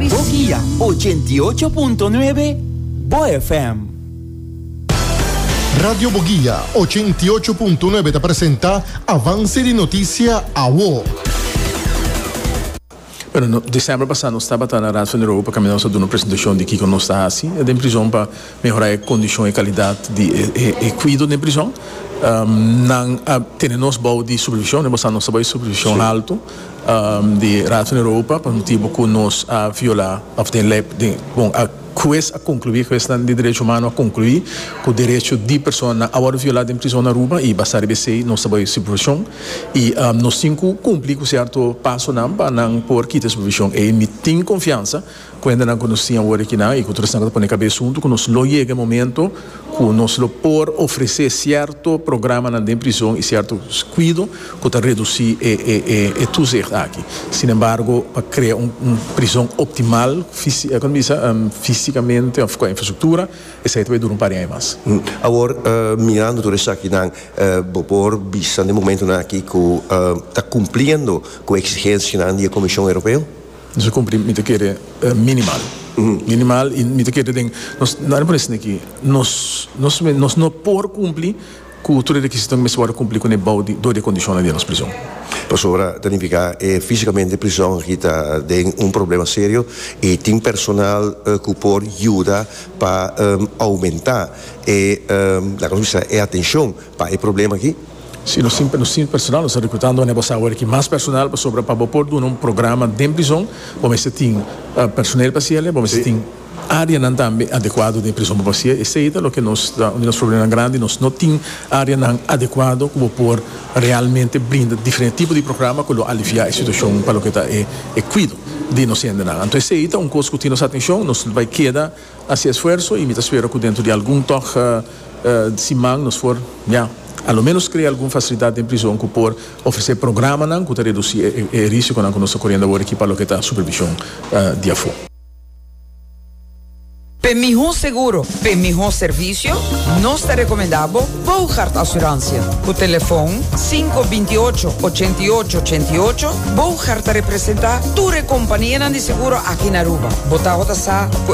Bo guia ochenta i ocho punto nuebe Bo FM. Radio Bo Guia ochenta i ocho punto nuebe ta presenta Avance di Noticia Awo. Bueno, no, december pasa nos tabata na Raad van Europa kami nos a duna presentacion di kiko nos ta hasi den prison pa mehora e condicion e calidad di e, e, e cuido den prison. Um, nan a tene nos bou di supervision, e basa nos ta bai supervision alto. di Raad van Europa pa motibu ku nos a violá òf den lei bon a hues a konkluí huesnan di derecho humano a konkluí ku derecho di personanan a wòrdu violá den prizòn Aruba i basá riba esei nos ta bai e supervishon i nos tin ku kumplí ku sierto pasonan pa nan por kita e supervishon ei mi tin konfiansa Kuendanan ku nos tin awor akinan i ku tur esnan ku ta pone kabes huntu ku nos lo yega e momento ku nos lo por ofresé sierto programanan den prizon i sierto kuido ku ta redusí e toezicht aki. Sinembargo, pa krea un prizon optimal kòm ta bisa físikamente òf kua infrastruktura, esei ta bay dura un par di aña mas. Awor mirando tur esakinan, bo por bisa den momentunan aki ku ta kumpliendo ku e eksigensianan di e Komishon Europeo? Nos a cumpli mi ta kere minimal minimal y mi ta kere den nos no anima esne aki nos nos mes nos no por cumpli cu tur e requisitonan cu mester worde cumpli cun e bou di dor di e condicionnan di e nos prison. Pasobra ta nifica e fisicamente prison aki ta den un problema serio y tin personal cu por yuda pa aumenta e laga nos bisa e atencion pa e problema aki. Si nos tin sin personal nos ta rekrutando manera bo sa awor aki mas personal pasobra pa bo por duna un programa den prizon bo mester tin personel pa hasiel y bo mester tin areanan tambe adekuado den e prizon pa hasiel esei ta loke nos ta un di nos problemanan grandi nos no tin areanan adekuado ku bo por realmente brinda diferente tipo di programa ku lo alivia e situashon pa loke ta e e kuido di nos hendenan anto esei ta un kos ku tin nos atenshon nos bai keda. hasi esfuerso y mi ta spera cu dentro di algun tog siman nos por ya a lo menos crea algun facilidad den prison cu por ofrece programanan cu ta reduci e risiconan cu nos ta coriendo awor aki pa loke ta supervision di afo. P'e miho seguro, p'e miho servicio, nos ta recomenda bo Boogaard Assurantia. Cu telefon sinku binti y ocho, ochenta y ocho, ochenta y ocho, Boogaard ta representa tur e companianan di seguro aki na Aruba. Bo tabatin a sa cu